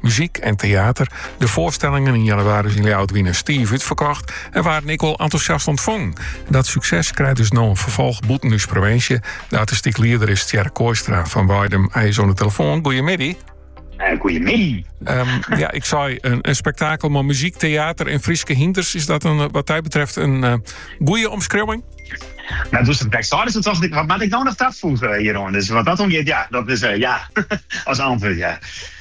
muzyk en teater. De foarstellingen yn jannewaris yn Ljouwert wiene stief útferkocht en waarden ek wol entûsjast ûntfongen. Dat sukses krijt dus no in ferfolch bûten ús provinsje. De artistyk lieder is Tjerk Kooistra fan Weidum. Hy is oan de telefoan. Goeiemiddei. Uh, goeiemiddei. Ehm, ja, ik sei in, in spektakel, mei muzyk, teater en Fryske hynders. Is dat in, eh, wat dy betreft in uh, goeie omskriuwing? No, doe'tst it my seidest, tocht ik, wat moat ik no noch tafoegje hjiroan? Dus wat dat oangiet, ja, dat is, ja, as antwurd, ja.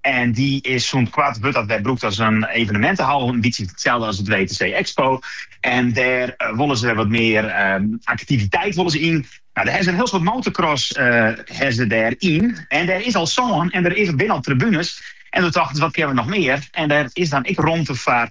En dy is sûnt koart wurdt dat wer brûkt as in evenementehal, in bytsje itselde as it WTC Expo. En dêr eh, wolle se wer wat mear eh, aktiviteit wolle se yn. No, dêr ha se in hiel soad motorcross ha se dêryn. En dêr is al sân en der is, binne al tribunes. En doe tochten se, wat kinne we noch mear? En dêr is dan ek romte foar